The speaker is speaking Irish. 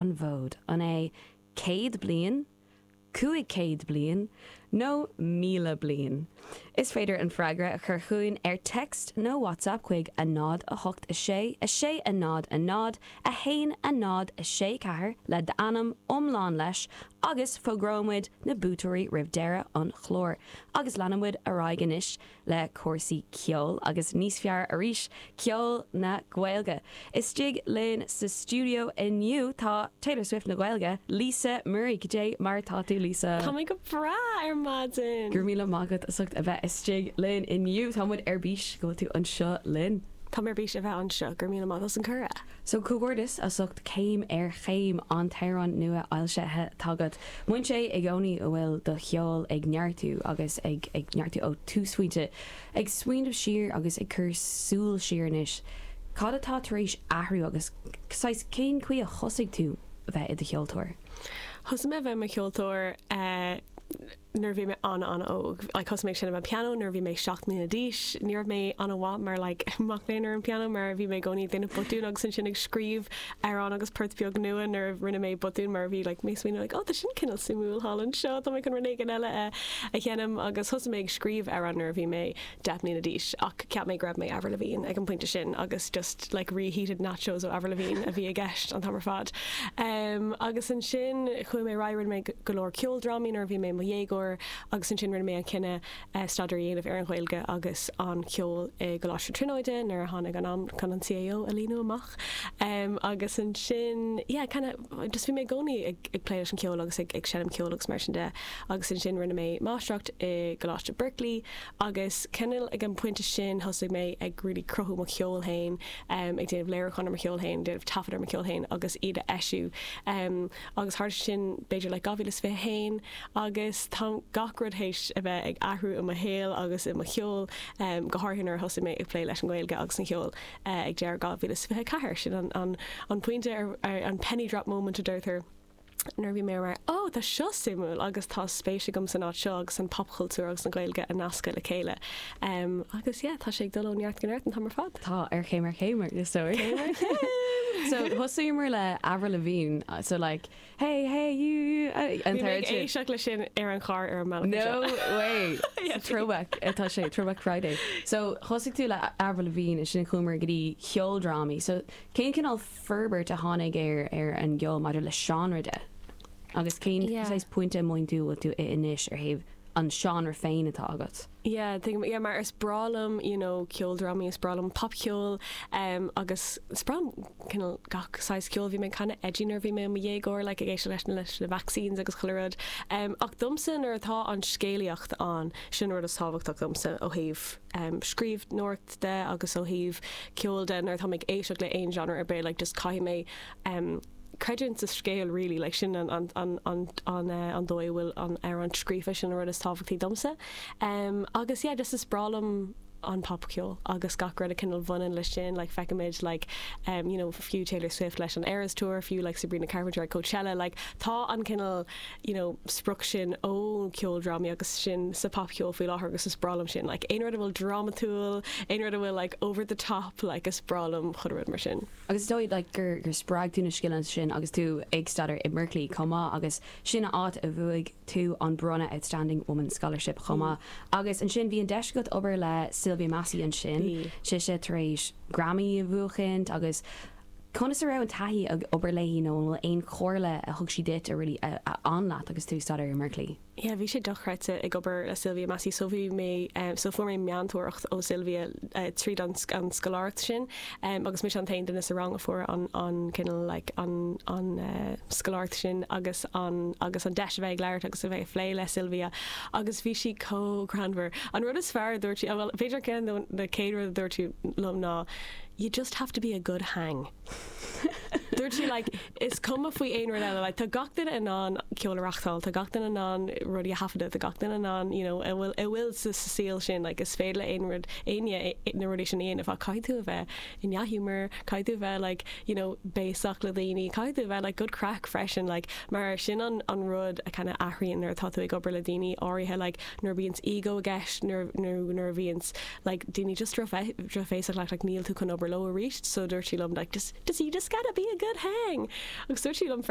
an bhfód. An é céad bliain, cúig céad bliain nó míle bliain? Is féidir an freagra a chur chugainn ar text nó WhatsApp chuig a náid a hocht a sé a sé a náid a náid a haon a náid a sé ceathair le d'ainm iomlán leis agus fógróimid na buaiteoirí roimh deireadh an chláir agus leanfaimid ar aghaidh anois le cúrsaí ceoil agus níos fearr arís, ceol na Gaeilge. Istigh linn sa stiúideo inniu tá Taylor Swift na Gaeilge, Lisa Murray. Go dé mar atá tú Lisa? Tá mé go breá ar maidin! Go raibh míle maith agat as ucht a bheith istigh linn inniu. Tá muid ar bís go bhfuil tú anseo linn. Tá mé ar bís a bheith anseo. Go raibh míle maith agat as an cuireadh! So comhghairdeas as ucht Céim ar Chéim, an t-amhrán nua fhoilsithe agat. Mothaíonn sé i gcónaí go bhfuil do cheol ag neartú agus ag ag neartú ó túsphointe. Ag smaoineamh siar agus ag cur súil siar anois, cad atá tar éis athrú agus saghas cén chaoi a thosaigh tú bheith i do cheoltóir? Thosaigh mé bheith i mo cheoltóir eh, nuair a bhí mé ana ana óg like thosaigh mé ag seinm an pianó nuair a bhí mé seacht mbliana d'aois, ní raibh mé ana mhaith mar like mac léinn ar an pianó mar a bhí mé i gcónaí ag déanamh botúin agus ansin ag scríobh amhrán agus poirt beag nua nuair a rinne mé botún mar a bhí like mé ag smaoineamh like oh tá sin cineál suimiúil thall anseo tá mé chun rud éigin eile a a dhéanamh agus thosaigh mé ag scríobh amhrán nuair a bhí mé deich mbliana d'aois ach cheap mé go raibh mé Avril Lavigne ag an pointe sin agus just like reheated nachos ó Avril Lavigne a bhí i gceist an t-am ar fad. Agus ansin chuaigh mé ar aghaidh rinne mé go leor ceoldrámaí nuair a bhí mé i mo dhéagóir agus ansin rinne mé an cinneadh staidéar a dhéanamh ar an Ghaeilge agus an ceol i gColáiste na Tríonóide nuair a tháinig an am chun an CAO a líonadh amach agus ansin yeah kind of just bhí mé i gcónaí ag plé leis an cheol agus ag seinm ceoil agus mar sin de agus ansin rinne mé máistreacht i gColáiste Berklee Agus cineál ag an bpointe sin thosaigh mé ag really cruthú mo cheol fhéin, ag déanamh léiriúcháin ar mo cheol fhéin, déanamh taifead ar mo cheol fhéin agus iad a eisiú. Agus tharla sin b'fhéidir like 2021 agus tá gach rud théis a bheith ag athrú i mo shaol agus i mo cheol, go háirithe nuair a thosaigh mé ag plé leis an nGaeilge agus an cheol ag deireadh 2024. Sin an pointe an penny drop moment a deirtear. nuair a bhí mé mar, Ó, tá seo suimiúil agus tá spéis agam san áit seo agus an popchultúr agus an Ghaeilge a nascadh le chéile. Agus yeah, tá sé ag dul ó neart go neart an t-am ar fad. Tá, céim ar chéim, is dóigh. Céim ar chéim! So, thosaíomar le Avril Lavigne, so like, hey, hey, you, you, uh, Bhí mé ag éisteacht leis sin ar an charr ar an mbealach anseo. No way! Sa throwback atá sé, Throwback Friday. So, thosaigh tú le Avril Lavigne, ansin chuamar go dtí ceoldrámaí. So, cén cineál forbairt a tháinig ar an gceol maidir le seánra de agus cén saghas pointe a bhfuil tú anois ó thaobh an seánra féin atá agat? Yeah, tuigim, yeah, mar is breá liom, you know, ceoldrámaí, is breá liom popcheol, agus is breá liom cineál gach saghas ceoil. Bhí mé ag canadh Eddie nuair a bhí mé i mo dhéagóir, like ag éisteacht leis leis na Vaccines agus chuile rud. Ach domsa nuair atá an scéalaíocht ann, sin an rud is tábhachtach domsa ó thaobh scríbhneoireacht de agus ó thaobh ceoil de nuair atá mé ag éisteacht le aon genre ar bith like just caithfidh mé em creidiúint sa scéal really like sin an an an an an eh an dóigh a bhfuil amhrán scríofa sin an rud is tábhachtaí domsa em agus yeah just is breá liom an popcheol agus gach rud a cineál bhaineann leis sin like feicimid like em you know fiú Taylor Swift leis an Eras Tour fiú like Sabrina Carpenter ag Coachella like tá an cineál you know, sprioc sin ó na ceoldrámaí agus sin sa popcheol faoi láthair agus is breá liom sin, like, aon rud a bhfuil drámatúil, aon rud a bhfuil like over the top, like, is breá liom chuile rud mar sin. Agus is dóigh like gur gur spreag tú na scileanna sin agus tú ag staidéar i mBerkeley chomh maith agus sin an áit a bhuaigh tú an bronnadh Outstanding Woman Scholarship chomh maith agus ansin bhí an deis agat obair le Sylvia Massy ansin, sise tar éis Grammy a bhuachaint agus Conas a raibh an taithí ag obair léi nó an bhfuil aon chomhairle a thug sí duit a really a fhan leat agus tú ag staidéar i mBerkeley? Yeah, bhí sé dochreidte ag obair le Sylvia Massy, so bhí mé em so fuair mé meantóireacht ó Sylvia eh tríd an an scoláireacht sin em agus mise an t-aon duine sa rang a fuair an an cineál like an an eh scoláireacht sin agus an agus an deis a bheith ag labhairt agus a bheith ag plé le Sylvia agus bhí sí chomh greannmhar. An rud is fearr a dúirt sí, a bhuel b'fhéidir ceann de na chéad rud a dúirt sí liom ná You just have to be a good hang. Dúirt sí like is cuma faoi aon rud eile, like tá gach duine in ann ceol a reachtáil, tá gach duine in ann rudaí a thaifeadadh, tá gach duine in ann you know a bhfuil a bhfuil sa sa saol sin, like is féidir le aon rud éinne na rudaí sin a dhéanamh, ach caithfidh tú a bheith i ndea-ghiúmar, caithfidh tú a bheith like you know béasach le daoine, caithfidh tú a bheith like good craic freisin, like mar sin an an rud a kind of athraíonn nuair atá tú ag obair le daoine áirithe, like nuair a bhíonns ego i gceist nuair nó nuair a bhíonns like daoine just drochbhéasach like níl tú chun obair leo aríst so dúirt sí liom like you just gotta be a good hang agus dúirt sí liom freisin